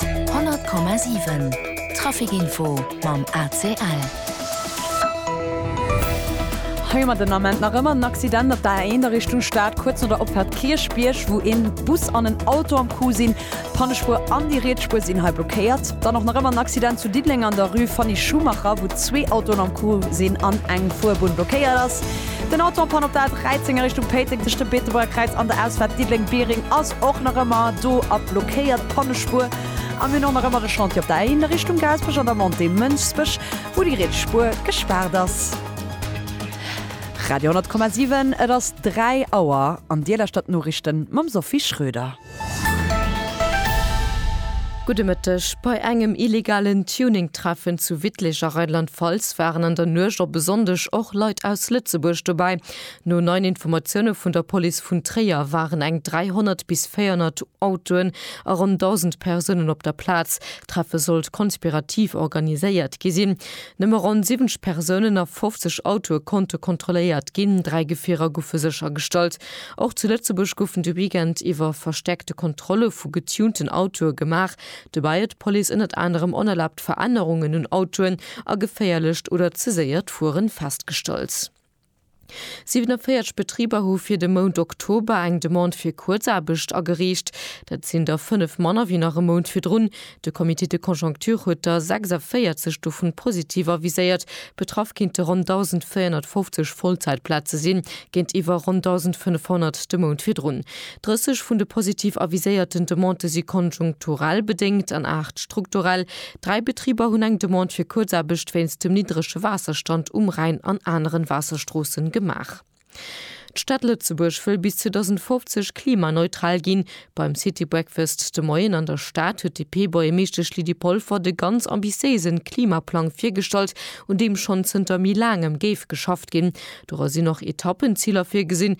100,7 Trafic Info mam ACL. Hei mat den Ament nach ëmmer en Accident op der A1 a Richtung Stad, kuerz no der Opfahrt Kierchbierg, wou een Bus an en Auto am Coup sinn. D'Pannespuer an déi riets Spuer sinn hei blockéiert. Dann och nach ëmmer en Accident zu Diddeleng an der Rue Fanny Schumacher, wou zwee Autoen am Coup sinn an eng Fuerbunn blockéiert ass. Den Auto en Panne op der A13 a Richtung Péiteng tëscht dem Beetebuerger Kräiz an der Ausfahrt Diddeleng-Biereng ass. Och nach ëmmer do a blockéiert d'Pannespuer a mir hunn och nach ëmmer e Chantier op der A1 a Richtung Gaasperech an der Montée Mënschbech, wou déi riets Spuer gespaart ass. Radio 10,7, et ass 3 Auer an Dir lauschtert d'Noriichte mam Sophie Schröder. Gudde Mëtteg. Bei engem illegalen Tuning-Treffen zu Wittlich a Rheinland-Pfalz waren an der Nuecht op e Sonndeg och Leit aus Lëtzebuerg dobäi. No neien Informatioune vun der Police vun Tréier waren eng 300 bis 400 Autoen a ronn 1.000 Persounen op der Plaz. D'Treffe sollt konspirativ organiséiert gi sinn. Nëmme ronn 70 Persounen a 50 Autoe konnte kontrolléiert ginn, dräi Gefierer goufe séchergestallt. Och zu Lëtzebuerg goufen de Weekend iwwer verstäerkte Kontrolle vu getunten Autoe gemaach. Dobäi huet d'Police ënnert anerem onerlaabt Verännerungen un Autoen a geféierlecht oder ze séiert Fueren festgestallt. 47 Betriber hu fir de Mount Oktober eng Demande fir Kuerzaarbecht agereecht. Dat sinn der fënnef manner wéi nach e Mount virdrun. De Comité de conjoncture huet der 46 dovun positiv aviséiert. Betraff kéinte ronn 1.450 Vollzäitplaze sinn, géintiwwer ronn 1.500 de Mount virdrun. 30 vun de positiv aviséierten Demandë si konjunkturell bedéngt an 8 strukturell. Dräi Betriber hunn eng Demande fir Kuerzaarbecht wéinst dem niddrege Waasserstand um Rhäin an aneren Waasserstroossen gemaach. D'Stad Lëtzebuerg wëll bis 2050 klimaneutral ginn. Beim City Breakfast de Moien an der Stad huet d'DP-Buergermeeschtesch Lydie Polfer de ganz ambitiéisen Klimaplang virgestallt, un deem schonn zënter méi laangem géif geschafft ginn. Dora sinn och Etappenziler virgesinn,